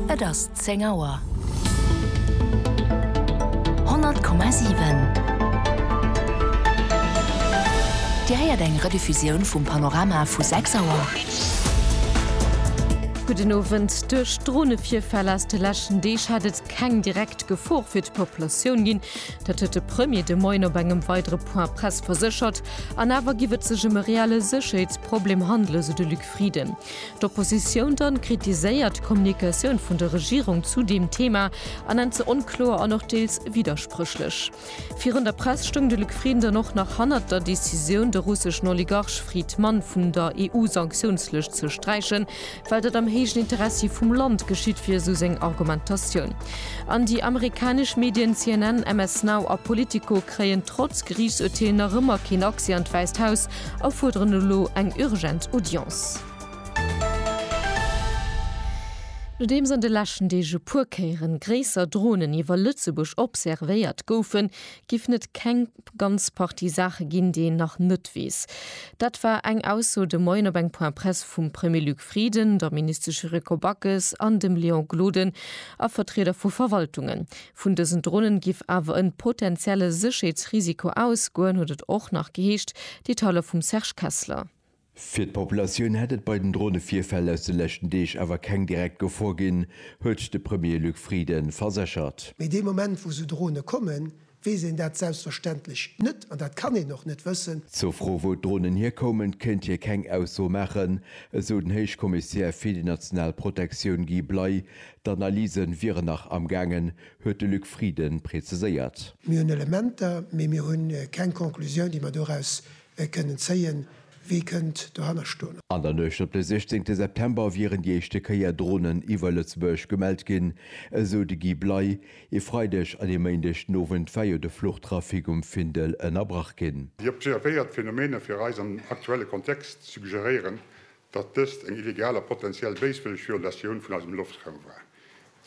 Et ass 10 Auer. 100,7 Dir héiert eng Rediffusioun vum Panorama vu 6 Auer. Gudden Owend. Duerch Dronevirfäll aus de leschten Deeg hat et keng direkt Gefor fir d'Populatioun ginn. Dat huet de Premier de Moien op engem weidere Point Press verséchert. An awer giff et sech ëm e reelle Sécherheetsproblem handelen, sou de Luc Frieden. D'Oppositioun dann kritiséiert d'Kommunikatioun vun der Regierung zu deem Thema a nennt se onkloer an och deels widderspréchlech. Virun der Press stoung de Luc Frieden dann och nach hannert der Decisioun, de russeschen Oligarch Fried Mann vun der EU-Sanktiounslëscht ze sträichen, well dat am héijen Interessi vum Land geschitt wier, esou seng Argumentatioun. An déi amerikanesch Medien CNN, MS Now a Politico kréien trotz Geriichtsurteel nach ëmmer keen Accès an d'Wäisst Haus. a fuerderen elo eng urgent Audience. Nodeems an de leschten Deeg e puer Kéieren gréisser Dronen iwwer Lëtzebuerg observéiert goufen, giffen et keng ganz Partie Saache ginn, déi een nach net weess. Dat war eng Ausso de Moien op eng Point Presse vum Premier Luc Frieden, der Ministesch Yuriko Backes an dem Léon Gloden a Vertrieder vu Verwaltungen. Vun dësen Dronen giff awer en potentielle Sécherheetsrisiko ausgoen, huet et och nach geheescht, Detailer vum Serge Kessler. Fir d'Populatioun hätt et bei den Dronevirfäll aus de leschten Deeg awer keng direkt Gefor ginn, huet de Premier Luc Frieden verséchert. Mee dee Moment, wou sou Drone kommen, weess een dat selbstverständlech net, an dat kann een och net wëssen. Zur Fro, wou d'Dronen hierkoumen, kéint hie keng Ausso maachen, esou den Héichkommissär fir déi national Protektioun Guy Bley, D'Analyse wieren nach am gaangen, huet de Luc Frieden preziséiert. Mir hunn Elementer, mee mir hu keng Conclusioun, déi mer doraus kënnen zéien. Wie kënnt dohanner stoen? An der Nuecht op de 16 September wieren déi éischte Kéier Dronen iwwer Lëtzebuerg gemellt ginn, esou de Guy Bley. E Freideg an e Méindeg den Owend war jo de Fluchtrafic um Findel ënnerbrach ginn. Déi observéiert Phenomene fir eis am aktuelle Kontext suggeréieren, datt dëst eng illegal a potentiell béiswëlleg Violatioun vun eisem Loftraum war,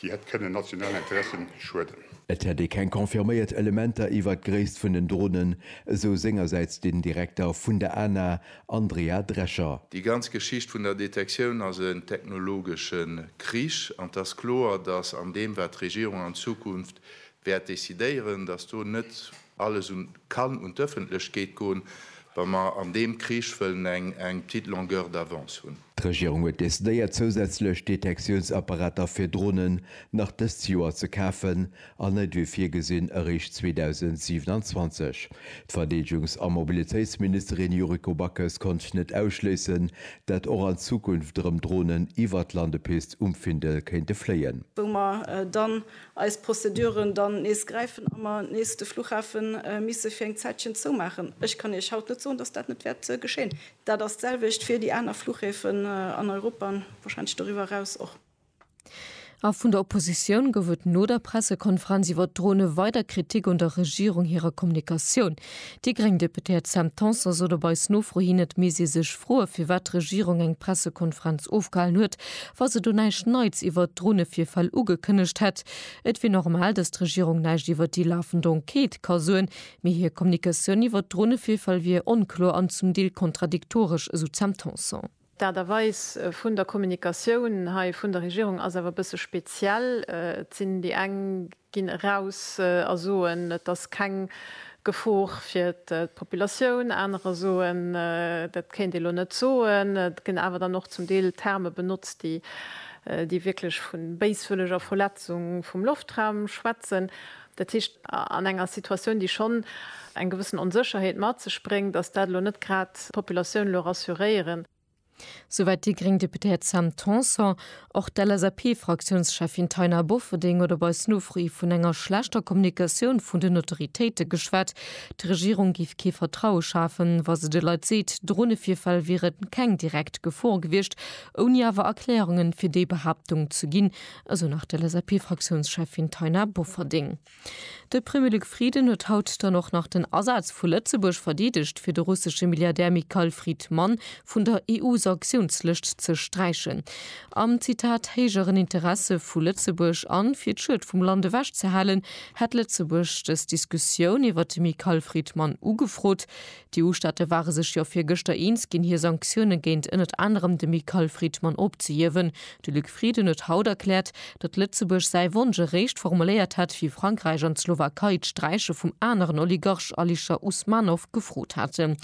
déi hätt kënnen nationalen Interessen schueden. Et hätt ee keng confirméiert Elementer iwwert d'Gréisst vun den Dronen, esou sengersäits den Direkter vun der ANA, Andrea Drescher. Déi ganz Geschicht vun der Detektioun ass en technologesche Krich an et ass kloer, datt an deem, wat d'Regierung an Zukunft wäert decidéieren, datt do net Alles un kann un d'Öffentlechkeet goen, wa mer an deem Krich wëllen eng eng petite longueur d'avance hunn. D'Regierung huet decidéiert zousätzlech Detektiounsapparater fir Dronen nach dëst Joer ze kafen an net wéi virgesinn eréischt 2027. D'Verdeedegungs a Mobilitéitsministerin Yuriko Backes konnt net ausschléissen, dat och an Zukunft erëm Dronen iwwert d'Landepist um Findel kéinte fléien. wou mer dann eis Prozeduren dann nees gräifen a mer nees de Fluchhafe misse fir eng Zäitchen zoumaachen. Ech kann Iech haut net soen, dass dat net wäert geschéien. Dat ass d'selwecht fir déi aner Fluchhäfen an Europa an wahrscheinlech doriwwer eraus och. A vun der Oppositioun gouf et no der Pressekonferenz iwwert d'Drone weider Kritik un der Regierung hirer Kommunikatioun. Déi gréng Deputéiert Sam Tanson sot op eis Nofro hin, et misst ee sech froen, firwat d'Regierung eng Pressekonferenz ofgehalen huet, wa se do näischt Neits iwwert d'Dronevirfäll ugekënnegt hätt. Et wier normal, datt d'Regierung näischt iwwert déi lafend Enquête ka soen, mee hir Kommunikatioun iwwert d'Dronevirfäll wier onkloer an zum Deel kontradiktoresch, esou d'Sam Tanson. D'Aart a Weis vun der Kommunikatioun hei vun der Regierung ass awer e bësse speziell. Et sinn déi eng, ginn eraus a soen, et ass keng Gefor fir d'Populatioun, anerer soen, dat kéint ee lo net soen. Et ginn awer dann och zum Deel Terme benotzt, déi déi wierklech vu béiswëlleger Verletzung vum Loftraum schwätzen. Dat heescht, an enger Situatioun, déi schonn eng gewëssen Onsécherheet mat sech bréngt, ass dat elo net grad d'Populatioun elo rassuréieren. Souwäit déi gréng Deputéiert Sam Tanson. Och d'LSAP-Fraktiounscheffin Taina Bofferding huet op eis Nofro hi vun enger schlechter Kommunikatioun vun den Autoritéite geschwat. D'Regierung géif kee Vertraue schafen, wa se de Leit seet, Dronevirfäll wieren keng direkt Gefor gewiescht, ouni awer Erklärungen fir déi Behaaptung ze ginn, esou nach d'LSAP-Fraktiounscheffin Taina Bofferding. De Premier Luc Frieden huet haut dann och nach den Asaz vu Lëtzebuerg verdeedegt, fir de russesche Milliardär Mikhail Fridman vun der EU-Sanktiounslëscht ze sträichen. Am, Zitat, héijeren Interesse vu Lëtzebuerg an fir d'Schued vum Land ewech ze halen, hätt Lëtzebuerg dës Diskussioun iwwert de Mikhail Fridman ugefrot, D'EU-Staate ware sech jo virgëschter eens ginn, hir Sanktioune géint ënnert anerem de Michael Friedman opzehiewen. De Luc Frieden huet haut erkläert, datt Lëtzebuerg säi Wonsch eréischt formuléiert hätt, wéi Frankräich an d'Slowakei d'Sträiche vum aneren Oligarch Alisher Usmanov gefrot haten.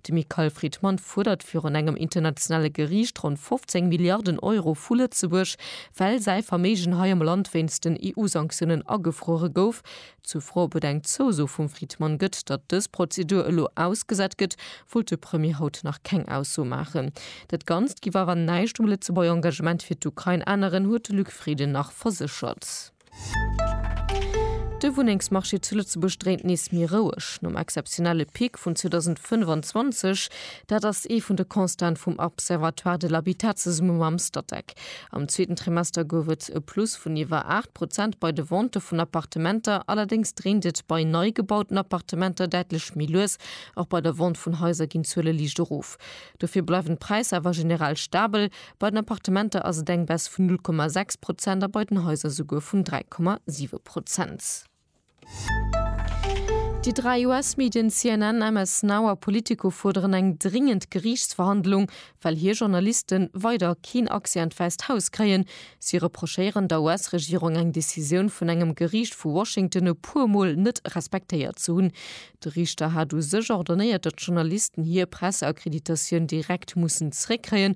De Michael Friedman fuerdert virun engem internationale Geriicht ronn 15 Milliarden Euro vu Lëtzebuerg, well säi Verméigen hei am Land wéinst den EU-Sanktiounen agefruere gouf. Zur Fro, ob et eng Zouso vum Fridmann gëtt, datt dës Prozedur elo ausgesat gëtt, wollt de Premier haut nach keng Ausso maachen. Dat Ganzt giff awer näischt um Lëtzebuerger Engagement fir d'Ukrain änneren, huet de Luc Frieden nach verséchert. De Wunnengsmarché zu Lëtzebuerg dréint nees méi roueg nom exzeptionelle Pic vun 2025. Dat ass ee vun de Constaten vum Observatoire de l'habitat zesumme mam Statec. Am zweeten Trimester gouf et e Plus vun iwwer 8 Prozent bei de Ventë vun Appartementer, allerdéngs dréint et bei nei gebauten Appartementer däitlech méi lues. Och bei der Vente vun Haiser ginn d'Zuele liicht erof. Dofir bleiwen d'Präisser awer generell stabel, bei den Appartementer ass et eng Baisse vun 0,6 Prozent a bei den Haiser souguer vun 3,7 Prozent. Déi dräi US-Medien CNN, MS Now a Politico fuerderen eng dringend Geriichtsverhandlung, well hir Journaliste weider keen Accès an d'Wäisst Haus kréien. Si reprochéieren der US-Regierung, eng Decisioun vun engem Geriicht vu Washington e puer Mol net respektéiert ze hunn. De Riichter hat u sech ordonnéiert, datt d'Journalisten hir Presseakkreditatioun direkt mussen zeréckkréien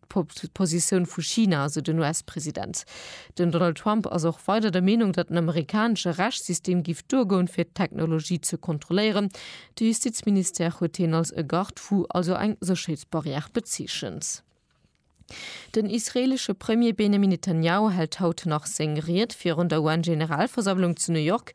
Positioun vu China, esou den US-President. Den Donald Trump ass och weider der Meenung, datt den amerikanesche Rechtssystem géif duergoen, fir d'Technologie ze kontrolléieren. De Justizministère huet hien als e Garde-fou, also eng Sécherheetsbarrière, bezeechent. Den israeelesche Premier Benjamin Netanjahu hält haut nach seng Ried virun der UN-Generalversammlung zu New York.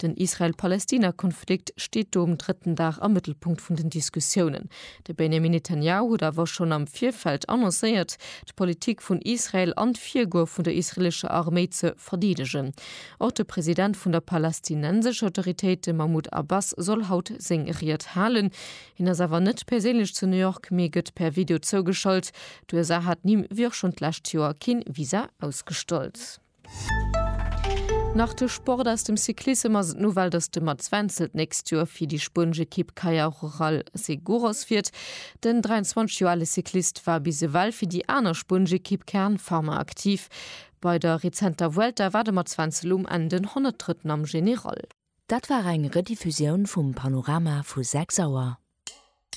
Den Israel-Palästina-Konflikt steet do um drëtten Dag am Mëttelpunkt vun den Diskussiounen. De Benjamin Netanjahu huet awer schonn am Virfeld annoncéiert, d'Politik vun Israel an d'Virgoe vun der israelescher Arméi ze verdeedegen. Och de President vun der palästinensescher Autoritéit, de Mahmoud Abbas, soll haut seng Ried halen. Hien ass awer net perséinlech zu New York, mee gëtt per Video zougeschalt. D'USA hat him, wéi och schonn d'lescht Joer, kee Visa ausgestallt. Nach de Sport aus dem Cyclissem ass et nowell, datt de Mats Wenzel d'nächst Joer fir déi spuenesch Ekipp Caja Rural Seguros fiert. Den 23 Joer ale Cyclist war bis ewell fir déi aner spuenesch Ekipp Kern Pharma aktiv. Bei der rezenter Vuelta war de Mats Wenzel um Enn den Honnertdrëtten am General. Dat war eng Rediffusioun vum Panorama vu 6 Auer.